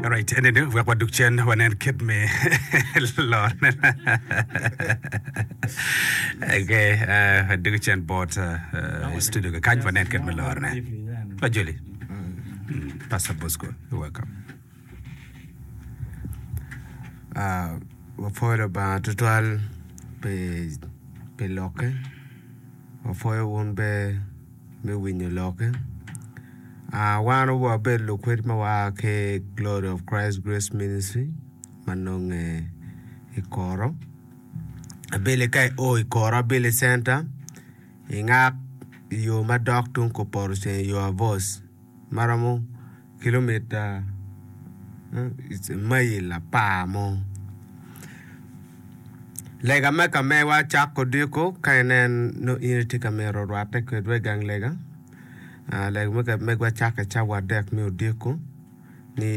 Alright, and then wek waduk cen wanen kit me lor. okay, uh, duk cen bot uh, uh, studio ka kany wanen kit me lor ne. Pa Joli. Mm, Pastor Bosco, you're welcome. Ah, wapwoyo Lubanga tutwal pi pi lokke wapwoyo wun be me winyo lokke. Uh, wan wabedo lukwed ma waa ki Glory of Christ Grace Ministry ma nonge i Koro. Abili ka i o i Koro Abili Center, ingak i yo madok tung Koporoceng i yo abos. ma romo kilomita mail apar mo. Lega me ka mewa cako diko ka inen no in itye ka mito rwate kwedwa i gang lega. Ah, lega me ka megwa cake cawa adek me odiko ni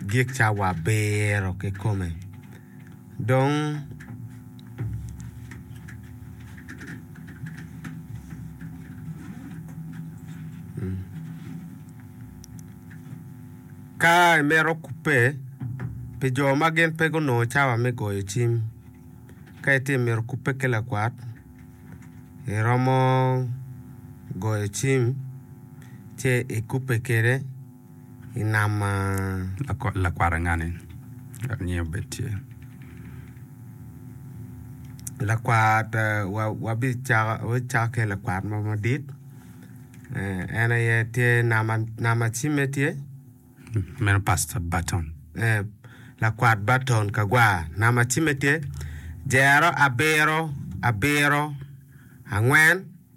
gik cawa abiro kikome. Dong, ka imito kubbe pi jo ma gin pe gunongo cawa me goyo cim, ka itye ka mito kubbe ki lakwat, iromo goyo cim ci ikubbe kwede. i nam maa. Lakwara ngani dok nyinge obed tye lakwat wabicako ki lakwat mo madit en aye tye nama cimme tye meno pasta baton lakwat baton kagwa nama cimme tye jero abiro abiro angwen.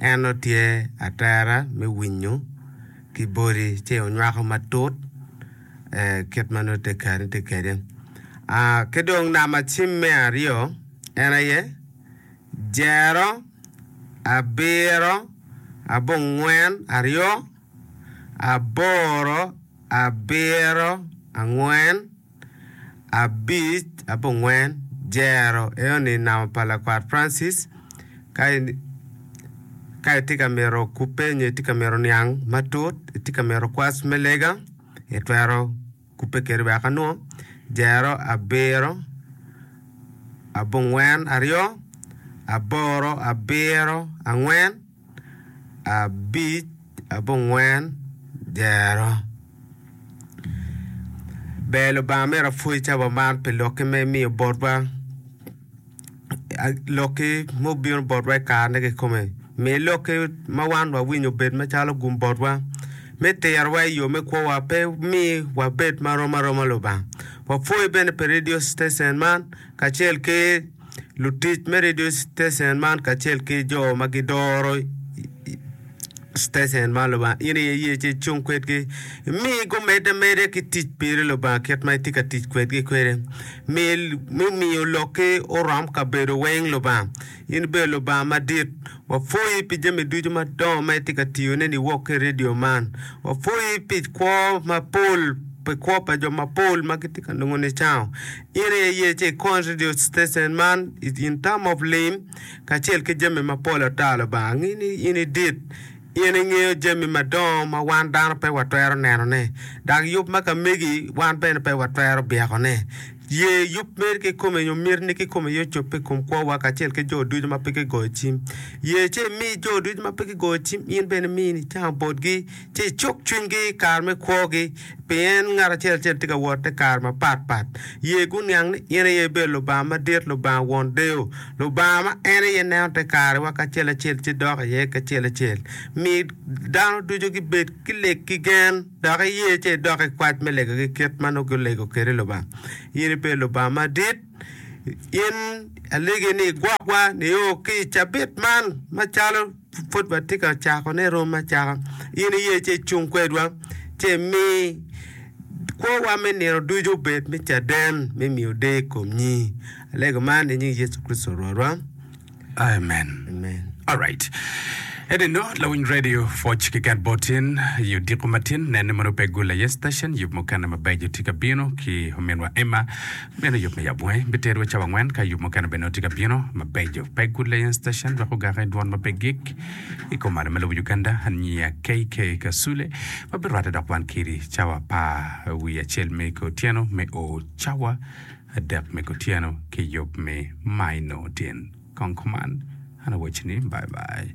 En otye atera me winyo ki bodi ci onywako matut kit ma nongo tekeni tye kwede. Ki dong namacim me aryo en aye jero, abiro, abongwen, aryo, aboro, abiro, angwen. abic ape ongwen jero eyo ni namo pa lakwat Francis ka ka itye ka mito ku penyo itye ka mito niang matut itye ka mito kwac me lega itwero kubbe kedi wek anwong jero abiro abongwen aryo aboro abiro angwen abic abongwen dyero. Ber Lubanga myero apwony cawa man pi lokki ma imiyo botwa. Lokki mubino botwa i karene kikome. Mi lokki ma wan wawinyo obed macalo gum botwa me terowa i yo me kwowa pe mi wabed ma rom aroma Lubanga. Wapwoyi bene pi redio citecen man kacel ki Lutic me redio citecen man kacel ki jo ma gidoro citecen man Lubanga, in aye iye ci icung kwedgi. Mi gumedde ameda ki tic piri Lubanga kit ma itye ka tic kwedgi kwede. Mi mi miyo lokki orom kabedo weng Lubanga. In ibedo Lubanga madit. Wapwoyi pi jami ducu madongo ma itye ka tiyoneni wok ki i redio man. Wapwoyi pi kwo mapol, pi kwo pa jo mapol ma gitye ka nongo nicango. In aye iye ci ikony radio station man in time of lim kacel ki jami mapol ata Lubanga ngi ni in idit in ingeyo jami madongo ma wan dano pe watwero neno ne dok yub ma ka megi wan bene pe watwero byeko ne ye yub meri kikome nyo mit ni kikome aye ocobbe ikom kwo wa kacel ki jo ducu ma pe ki goyo cim ye ci imi jo ducu ma pe ki goyo cim in bene imi ni cam botgi. ci icuk cwinygi i kare me kwogi, pien ngat acel acel tye ka wot te kare mapat pat. Ye guniang ni in aye ibedo Lubanga Madit, Lubanga Won Deyo, Lubanga ma en aye neno te karewa kacel acel ci dok iye kacel acel. Mi dano ducu gibed ki leg ki gen, dok iye ci idok i kwac me legogi kit ma nongo gulego kwede Lubanga. In ibedo Lubanga Madit, in alegi ni igwokwa nio ki i cabit man macalo. pud watye ka cakone romo acaka, in iye ci icung kwedwa ci imi kwowa me nino ducu obed me caden me miyo deyo i kom nyingi. Alego man i nying Yecu Kricito Rwotwa. Amen. Amen. Alright. Enino lawiny radio pwoc keken bot in i odiko matin nenne mono pe gule aye station yub mukene mabeco tye ka bino ki ominwa Emma Meno yub me abunge biterowa cawa angwen, ka yub mukene bene nongo tye ka bino mabeco. Pegwood Layan Station dok ogake i dwon ma pe gik. I kom mano, me lobo Uganda, aniya KK Kasule ma birwatte dok wan kiri cawa pa wi acel me otyeno me o cawa adek me kutyeno ki yub me maino tin. Kong kuman, an awaci ni bye bye.